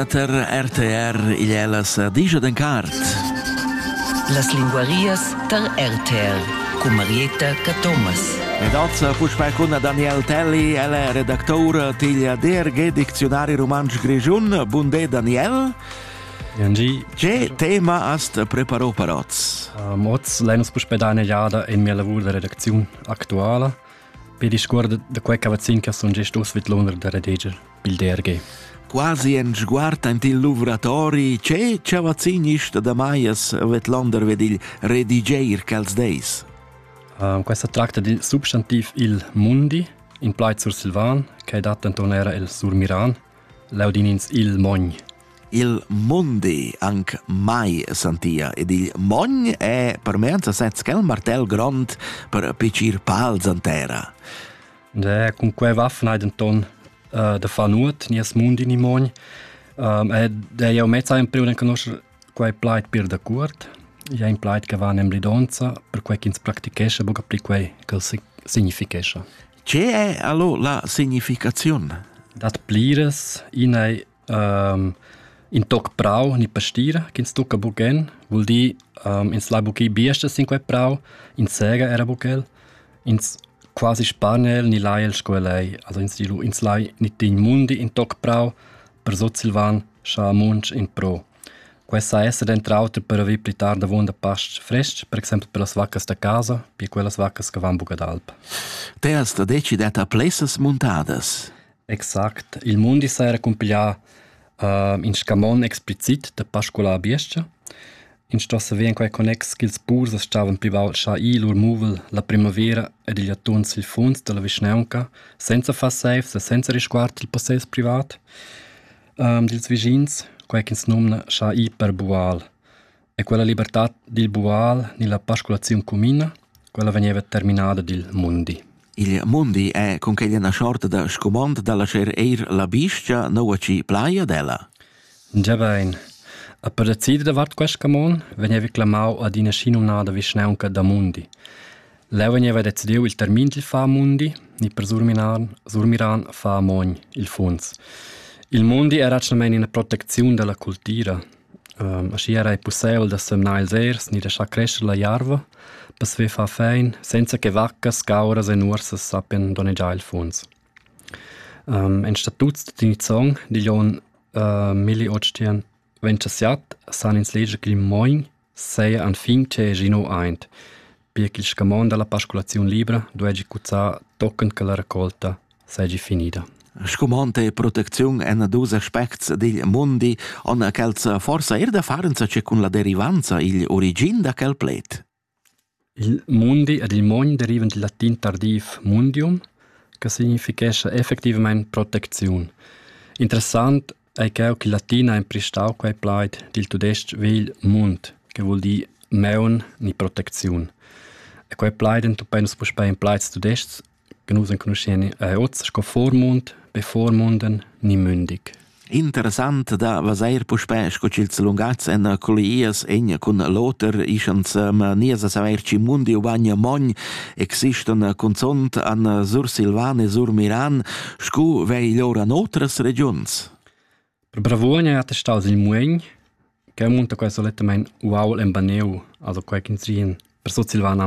tar RTR igl è las digia d'en cart. Las linguarias tar RTR cu Marietta Cathomas. Ed az puspè cun Daniel Telli, el è redactour tigl DRG Dicziunari Rumantsch Grischun. Bunde Daniel. Angie. Che tema hast preparò per oz? Um, oz lein uns puspei da eine Jada in mia lavur da redacziun aktuala. Per discuor da quei cavazzin che sun gest uss vid l'uner da redeger, bilder ge. Quasi en sguard ant il luvratori, ce cavazzin ist da Maias Vetlander ved il redigeir quels deis? Uh, questa tracta di substantiv il mundi, in plaid sur Silvan, che dat enton era el sur Miran, Laudin ins il mogn. Il mondi anc mai sentia ed il mogn è per me en sasez quel martell grond per picir pals an terra. De, cum que va fneiden ton uh, de fa nuot, nies mund in i mogn. Um, e de jau mezza in priuren conoscer Quei plaid pir dacuort ei in plaid che va en emblidonza, perquei ch'ins practichescha buca pli quei ch'el significhescha. Tge è allo la significaziun? Dat pliras. In ei um, in toc prau, ni pastira, ch'ins tucca bugen, vul dir um, ins lai buca biesters sin quei prau, in sega era buc el. Ins quasi spanel ni lai el sco el ei, also ins di lu, ins lai ni digl mundi in toc prau per sutsilvan, scha amunch in pro. Quest sa esser denter auter per haver pli tard avunda pastg frestg, per exempel per las vaccas da casa, pia quellas vaccas che van buca d'alp. Te has da decider ta plessas muntadas. Exact. Il mundi saja cumpiglià ün scamond explicit da pascular a biestga. Ins sto saver in quei connex ch'ils purs as stavan plü baud schà ir lur muvel la primavera ed igl attuorn sil fuonz dalla vischnaunca senza far seifs e senza risguard il possess privat dils vischins, quei ch'ins nomna schà ir per bual. E quella libertad dil bual ni la pasculaziun cumina, quella vegneva terminada dil mundi. Il mundi è con quella una sorta da scumond da lascer eir la biscia noua ci plaia della. Già bein. A per decidere davart questa camon veniva clamau ad ina schinumnada vischnaunca da mundi. Leu veniva decidiu il termin dil fa mundi, ni per Surmiran, Surmiran fa mogn, il funds. Il mundi era actualmente una protezione della cultura. Aschia era ei pusseivel da semnar ils ers ni laschar crescher la jarva per saver far fein senza che vaccas, scauras e nuorsas sappien donnegiar il funs. En statuts da Tinizong digl onn milleotschient ventschassiat san ins leger ch'il mogn seia enfin tscheu gie neu aint. pia ch'il scamond dalla pasculaziun libra duegi cuzzar tochen che la raccolta seigi finida. Scumond e protecziun en dus aspects dil mundi on quels forsa er da farenza che cun la derivanza igl origin da quel pled. Il mundi ed il mogn derivan dil latin tardiv mundium, che significhescha effectivamente protezione. Interessant ei cheu che latina ha emprestau quei plaid dil tudestg vegl mund, che vul dir maun ni protecziun. E quei plaid entupei nus puspei in plaids tudestgs che nus enconuschien eh, oz sco Vormund, Bevormunden ni Mündig. Interessant da vaseir puspè sco ch'ils lungats en collias en cun l'oter ischans ma nies a saver ci mundi u bagna mogn existon cunzont an Sur Silvan e Sur Miran Scu vegl ora en otras regiuns? Per Bravuogn è attestau il Muegn, che munta quai solettamain uaul en Baneu, also quai ch'ins ri per Sutsilvana